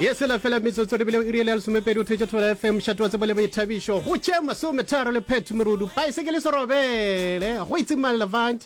ye sela fela metsotso re bile iriele ya lesomepedi o thetše thola fm šatoa tsebo le boithabišo go tše masometharo le phetho merudu baesekele serobele go itsimang levant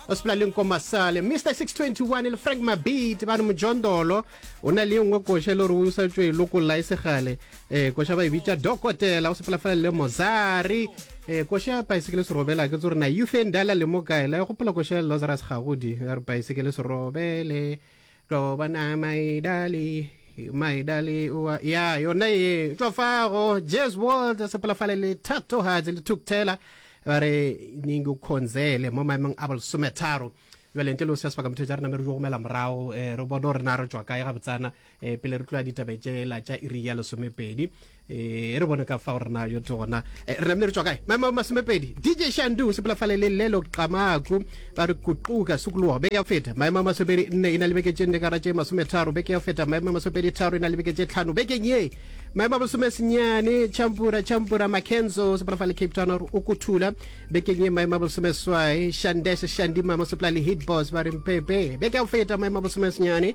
o sepela le nko masale mr 621 le frank mabit ba re mojondolo o na le nngwe koša e le gore o sa tšwe e lokolla e segale um koša ba e bitša dokotela o sepela fela le mozari um koša paesekele serobela ke tso re na youth e ndala le mo kae la e gopola koša le lazarus gagodi ya re paesekele serobele tlo bona maidali maidali wa ya yona ye tšwa fago jes world sepelafale le thatohatse le thukthela ba re ningukhonzele mo maemong a bolesometharo jale ntle le o se sebaka motho tsa rena me re jo gomela morago um re bone gore na re tswa kae ga botsana um pele re tloya ditabe tšela tša iri ya lesomepedi e re bone ka fa gore na yo tse gona e, re namile re tswa kae maemo masomepedi dj shandu o sepela fale le lelo qamaku ba re kuquka sukuluwa beke ya feta maemo a masomepedi nne e na le beke tše nne ka ra tše masometharo beke ya feta maemo a masomepedi tharo e na le beke tše tlhano bekeng ye maemo a masome senyane champura champura makenzo o sepela fale cape town gore o kuthula bekeng ye maemo a masome swai shandeshe shandima mo sepela le hitbos ba re mpepe beke ya feta maemo a masome senyane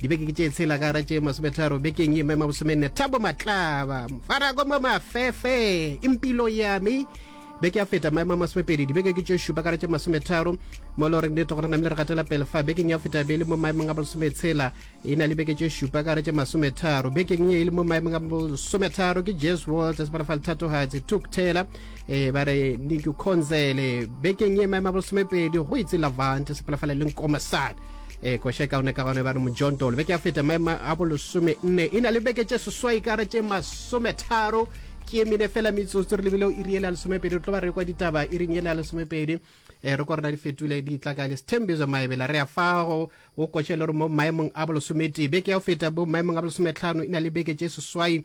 dibeke ke tše tshela ka gara tše masometharo bekeng ye mema bosomenne thabo matlaba farako mo mafefe impilo yame beke ya feta maemo a masomepedi dibeke ke tše šupa kara tše masometharo mo le goreng nete gore name le re gatela pele fa bekeng ya feta be le mo maemong a bosometshela e na le beke tše šupa kara tše masometharo bekeng ye e le mo maemong a bosometharo ke jes walters ba re fa lethatogatsi tuk taylor um ba re niku conzele bekeng ye maemo a bosomepedi go itse lavant sepalafala e leng komasane ee koša e kaone ka gone ba re mojontolo beke ya feta maema a bolesome nne e na le beke tše seswai ka re tše masometharo ke emine fela metsotso re lebile o iri ele ya lesomepedi re tlo ba re kwa ditaba iring ele ya lesomepedi um re ko rena di fetule di tla ka lesithembizo maebela re ya fago o koše le gore mo maemong a bolosometee beke ya go feta bo maemong a bolosometlhano e na le beke tše seswai